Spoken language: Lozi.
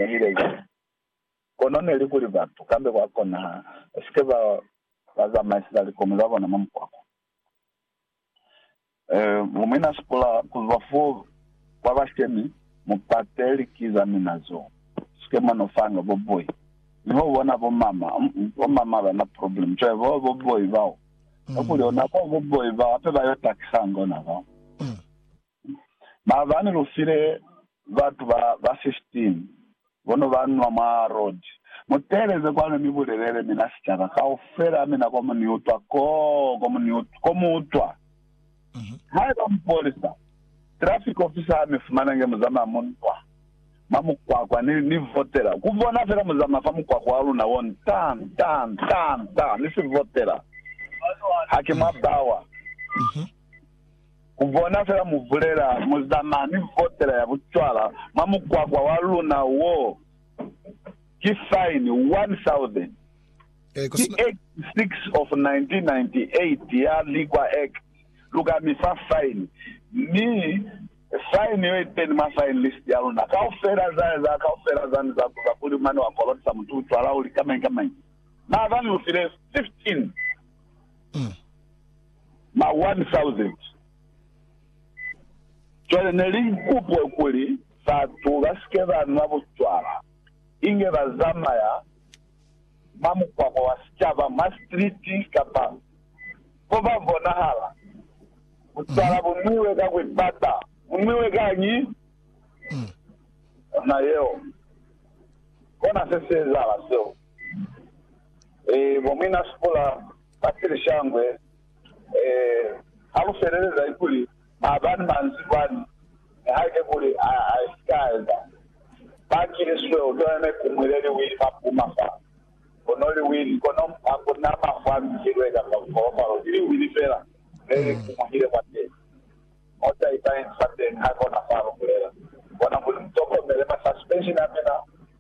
Nihile ki kono neli kuli batu kambe kwa kona ha ba sike ba ba zamaiseza likomi za bona mwa mukwakwa. E, mu mina sipula ku zwa fo kwa bashemi, mu pate liki za mina zo sike mwa no fanga bo boi. Mi ho bona bo mama, um, bo mama ba na problem. Cwale bo, bo boi bao, kakuli ona bo, bo boi bao, hape ba yo takisa ngona bao. Maabani lu file batu ba ba 15 bo no ba nwa mwa roji. Mu teeleze kwanu mi bulelele mina sicaba kaufela mina ko mu ni utwa koo ko mu utwa. Haiba mupolisa, traffic officer, ha mi fumana nge mu zamaya mu ntwa mwa mukwakwa, ni, ni votela ku bona fela mu zamaya fa mukwakwa wa luna wo nta, nta, nta, nta, ni si votela. Haki mwa bawa. Ku bona fela mu bulela, mu zamaya mi votela ya bucwala mwa mukwakwa wa luna wo, ki faini 1,000. Ki Act 6 of 1998 ya Liquor Act, lu ka mi fa faini. Mi faini yo iteni mwa fine list ya luna. Kaufela za eza kaufela zani za kuza kuli mane wa kolotisa mutu bucwala uli kamañi kamañi. Maazani lu file 15. ma 1,000. Cwale ne li kupwe kuli batu ba si ke ba nwa bucwala, inge ba zamaya mwa mukwakwa wa sicaba, mwa sitiliti, kapa mo ba bonahala. Bucwala bu nwiwe ka ku ipata. Bu nwiwe kañi? Ona yeo. Kona se si ezahala seo. Ee, bo muinasipula. Bakili Shangwe, Ee, ha lu feleleza kuli maabani manzwi kwani, nihaike kuli a si ka eza. Bakili Swe, U tolene ku mwile liwili mwa puma fa, kono liwili, kono ha ku na mafu a mihilwe kamba mupolopalo, ki liwili fela le li kumuhile kwateni. Mo taipa inzi fateni, hakona fa lu bulela. Kona kuli mu tokomele ma suspension a mina,